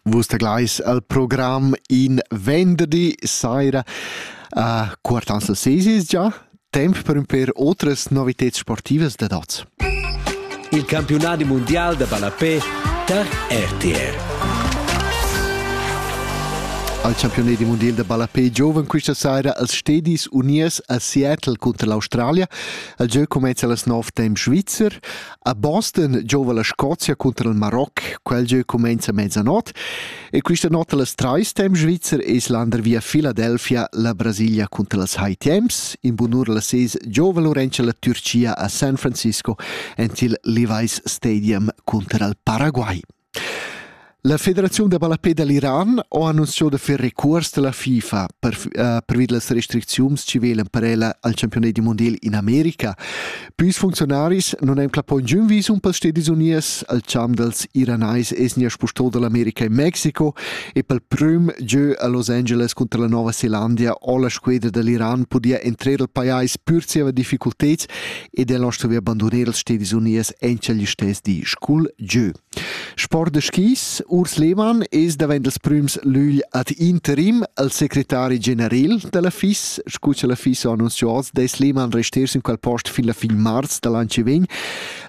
Vus teglais al program in venderdi saira a Quartans al Sesis già temp per per otras novitads sportivas da dots. Il campiunadi mondial da ballapé tar RTR. Al campiunadi mondial da ballapé giovan questa saira als Stedis Unies a Seattle contra l'Australia. Il gieu cumenza a las 9 temp svizzer. A Boston giova la Scozia cunter il Maroc, quel gieu cumenza mezzanot e questa nota las trais temps svizzer es lander via Philadelphia la Brasilia cunter las high temps. In bunur la ses giova Laurentia la Turcia a San Francisco ent il Levi's Stadium cunter al Paraguay. La federaziun da ballapè da l'Iran ha annunzià da fer recuors da la FIFA per, uh, pervi da las restricziuns chi velan per ella al championat dal mondial in America. Püs funcziunaris non han clappà giun visum pels Stedis Unies al champ dals iranais esnia spustò dall'America in Mexico e pel prüm gieu a Los Angeles contra la Nova Zeelandia ho la squedra dall'Iran podia entrer al pajais pür zieva difficulteds ed el ha stuvi bandunar els stedis uniers en quel stess di cul gieu. Sport da skis, Urs Lehmann es davent els prüms lügl ad interim al secretari general della FIS, scu cha la FIS ha annunziato, des Lehmann resters in quel post fin la fin mars dall'an che vegn.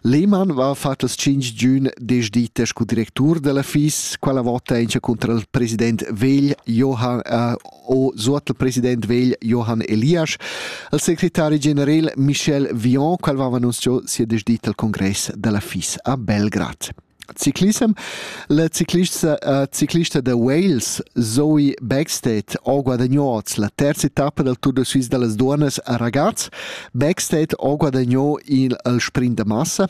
Lehmann va fatto els 5 giugn desdite scu directur della FIS, quella vota encha contra il president vegl Johann äh, o suot il president vegl Johann Elias, al secretari general Michel Vion, qual aveva annunziato sia desdita al congress della FIS a Belgrad. Ciclissem. La ciclista, uh, ciclista da Wales Zoe Backstedt ha guadagnato la terza etappa del Tour de Suisse delle Dunas a ragazzi. Backstedt ha guadagnato il, il sprint da massa